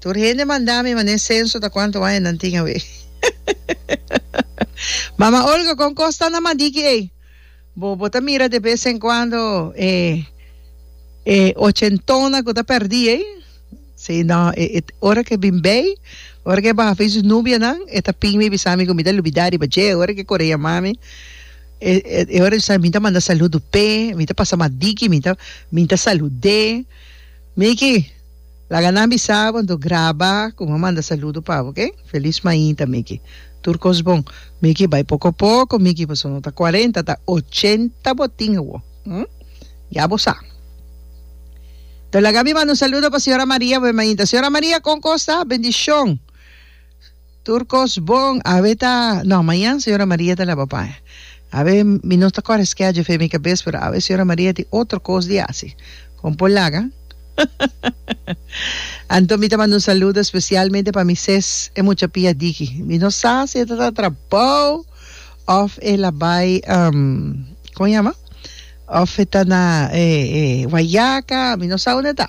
Tur hende manda mi man'e senso ta cuanto wañanan tin awe. Mama Olga con cos ta na madiki ey? Bo bo ta mira de vez en cuando e e ochentona cu ta perdi ey? Sí no e e ora ke bin bay ora ke baha fey su nubianan e ta pin mi bisa mi cu mi ta lubida riba dje ora ke core yama mi e e e ora bisa mi ta manda saludu p'e mi ta pasa madiki mi ta mi ta salude miki Laga nan bisa bo anto graba ku bo manda saludo pa bo ok felis mainta Micky tur kos bon Micky bai poko poko Micky paso no ta cuarenta ta ochenta bo tin awo hm ya bo sa to laga mi manda un saludo pa señora Maria bo e mainta señora Maria kon kosa bendicion. Tur kos bon awe ta no mañan señora Maria ta laba paña awe mi no ta kore schedule fe mi cabes pero awe señora Maria tin otro kos di haci con por laga anto mi ta manda un saludo especialmente pa mi ses e mucha pia diki mi no sa si e ta ta trabao of e la bay um como yama of e ta na e e guayaca mi no sa unda e ta.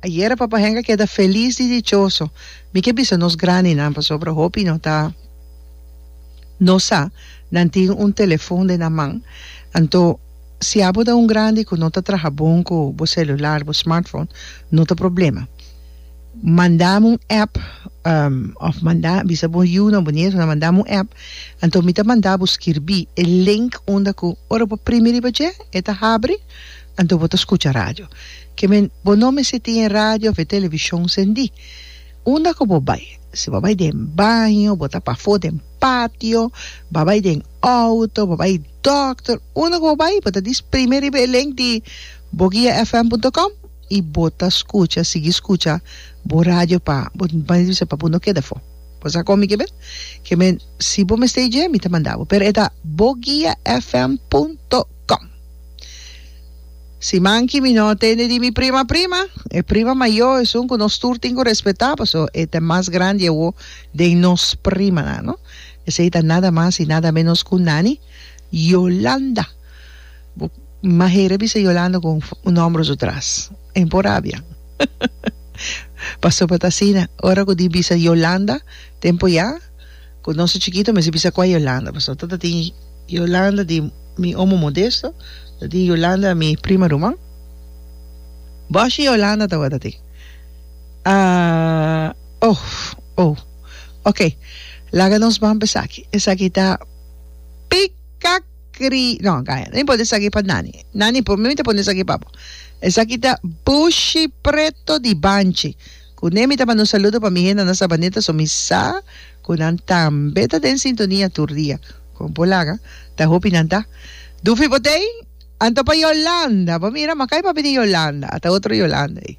Ayera Papa Henk a keda felis y dichoso. Mi ke bisa nos grandinan pasobra hopi no ta no sa nan tin un telefon den nan man. Anto si abo ta un grandi ku no ta traha bon ku bo selular, bo smartphone, no ta problema. Mandam un app òf manda bisa bo yu nan, bo nieto nan, mandam un app. Anto mi ta manda bo skirbí e link unda ku ora bo primi riba dje e ta habri. Anto bo ta skucha radio. Ke men, bo no mester tin e radio of e televishon sendí. Unda ku bo bai, si bo bai den baño, bo ta pafó den patio, bo a bai den outo, bo a bai dòkter, unda ku bo bai, bo ta dis prime riba e link di Boguiafm punto com i bo ta skucha, sigui skucha bo radio pa bo mester pa bo no keda afó. Bo sa komo mi ke men? Ke men, si bo mester dje, mi ta manda bo. Pero e ta Boguiafm punto com. Si manki mi no tende di mi prima prima, e prima mayo esun ku nos tur tin ku respetá, paso e ta mas grandi awo den nos primanan, no? Esei ta nada mas i nada ménos ku Nani Yolanda. Bo mahera a bisa Yolanda ku un nòmber su tras. En por rabia. Paso pa ta asina, ora ku di bisa Yolanda, tempu ya. Cu nos ta chiquito mester bisa cua Yolanda pasobra ta tin Yolanda di mi omo Modesto ta tin Yolanda mi prima ruman boshi Yolanda tabata tin ahh oh oh ok laga nos ban pa esaki esaki ta pica cri no gaya no importa esaki pa nani nani por mi mi ta pone esaki pa bo esaki ta bushi preto di banchi Kuné mi ta manda un saludo pa mi henda na Sabaneta so mi sa ku nan tambe ta den sintonia tur dia. Kon bo laga? Ta hopi nan ta. Dufi bo t'ei? Anto pa Yolanda? Bo mira, Makai papi di Yolanda, a ta otro Yolanda ei.